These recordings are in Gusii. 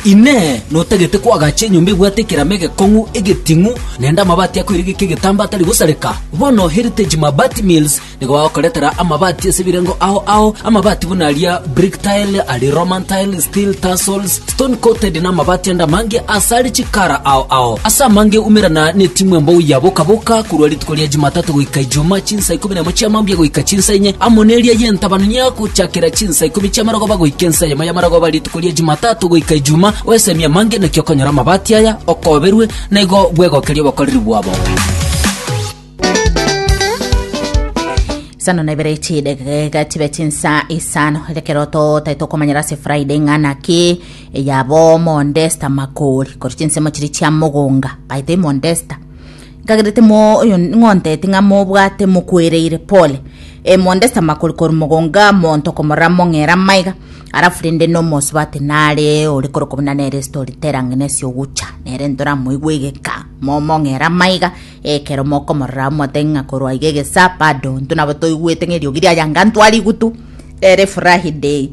Inee! Notagete koagacha enyomba ebwate ekerama egekong'u, egeting'u, naende amabati akoirigeka egetambaa atari gosareka? Bono Heritage Mabati Mills nigo bagokoretera amabati ase ebirengo ao ao, amabati buna aria brick tile, aria Roman tile, steel tassels, stone coated na amabati ande amange ase are chikara ao ao. Ase amange umerana na etimu embou ya boka boka korwa rituko ria Jumatatu goika Ijumaa chinsa ikomi na emo chiamambia goika chinsa inye amo neria yentabana niagochakera chinsa Saa ikomi chi'amarogoba goika ensa eyemo y'amarogoba rituko ria Jumatatu goika Ijuma, oesemie amange naki okonyora amabati aya, okoberwe, na igo bwegokerie obokoreri bwabo. Sano na ibere chidegega chibe chinsa isano ekero totae tokomanyera ase friday ng'a naki eyabo mondesta makori kori chinsemo chiri chia mogonga baito imondesta Nkagerete moyo ng'onteti ng'a mobwate mokwereire, pole, e mondeste amakori korwa mogonga monto komorora mong'era maiga, arafu rende nomosubati nare ore korokobuna nere story tera ng'ina ase ogocha, nere ntoramoigwe egeka momong'era maiga, ekero mokomorora omotebia ng'a korwa iga egesa bado ntu nabo toigwete ng'a eriogi riaye anga ntwari gutu, ere furahi day.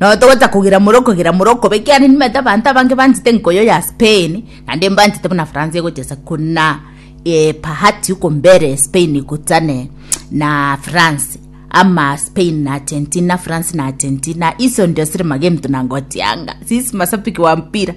Nao togweta kogera more okogera more okobe ekiagera nimanyete abanto abange banchete enkoyo ya Spain naende mbanchete buna France egochesa kona eh, bahati okombera Spain egotane na France ama Spain na Argentina, France na Argentina iso ndio sire magento nangotianga sisi masapiki wa mpira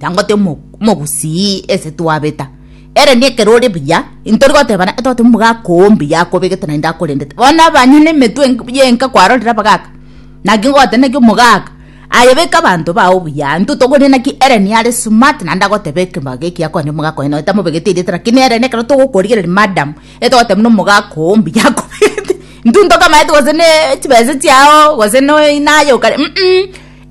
Tangote omogusii ase twabeta. Ere nekero ore buya intori gotebana tote omogaka oo mbuya akobegete naende akorendete. Bono abanywe nemetwe yenka kwarorire abagaka. Naki ngote naki omogaka aye beka abanto bao buya intwe togorire naki ere niare smart naende agotebe ekebago ekiya kore omogaka oye noe tamobegete erieta lakini ere nekero togokorigereria madam etogoteba buna omogaka oo mbuya akobegete. Intwe ntokamanyete gose ne chibesa chiao gose noe naye okare.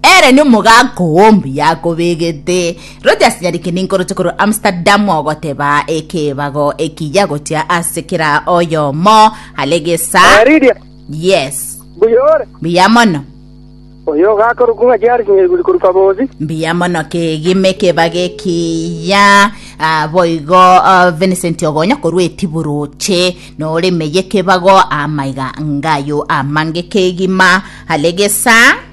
Ere nomogaaka oo mbuya akobegete. Rogers Nyariki ninkoroche korwa Amsterdam ogoteba ekebago ekiya gochia ase kera oyomo are gesa. Eh, Lydia, Yes. mbuya ore? Mbuya mono. Oyo ogakorokwa ng'a Jared Nyaiguri korwa Kabozi. Mbuya mono kegima ekebago ekiya. Ah, boigo ah, Vincent Ogonya korwa Etiburuche noremeye ekebago amaiga ngayo amange kegima are gesa.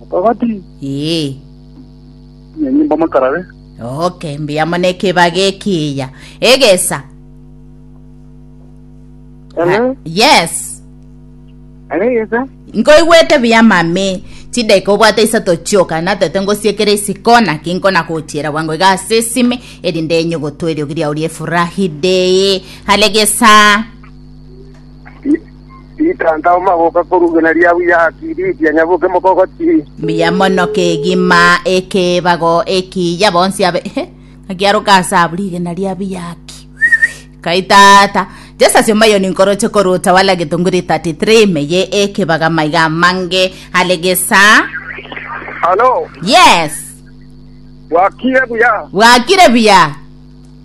Mokabati. Ee. Enyimba mokarabe. Okay, mbuya mono ekebaga ekiya. Egesa. Hello? Yes. Hello, Yesa? Nkoigwete buya mami. Chideka obwate isato chioka natete ngosiekere isiko naki nkona gochiera bwango iga ase esime erinde enye gotwa eriogi riao riefurahi dei. Halegesa. Ritanta o magoka korwa igena ria buya haki, riitia nyaboke mokogoti. Mbuya mono kegima ekebago ekiya bonsi abe Ehe, ng'a kiaroka ase abwo rigena ria buya haki. Kai tata Jesu ase omoyoni nkoroche korwa Utawala Gitunguri 33 meye ekebaga maiga amange are gesa Halo, yes bwakire buya. bwakire buya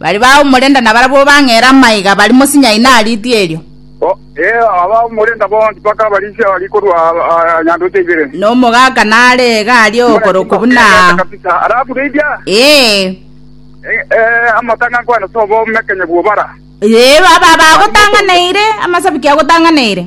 Baria baumorenda nabarabwo bang'eera amaiga bari mosinye aino a riitwa erio. Ee, abaumorenda bonsi bakaba risiaba rikorwa nyandoche ibere. Na omogaka nare iga are okorokwa buna aa. Ee. Ee, aba abagotang'aneire, amasabiki agotang'aneire.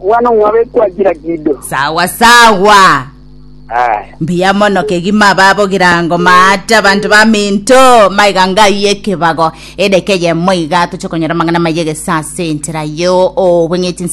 Omwana omwabo ekwachira kido. Sawa sawa. Aya. Mbuya mono kegima baba ogirango maate abanto baminto maiga ngaiye ekebago edeke yemo iga toche konyora amang'ana maye gesa ase enchera yo obweng'iti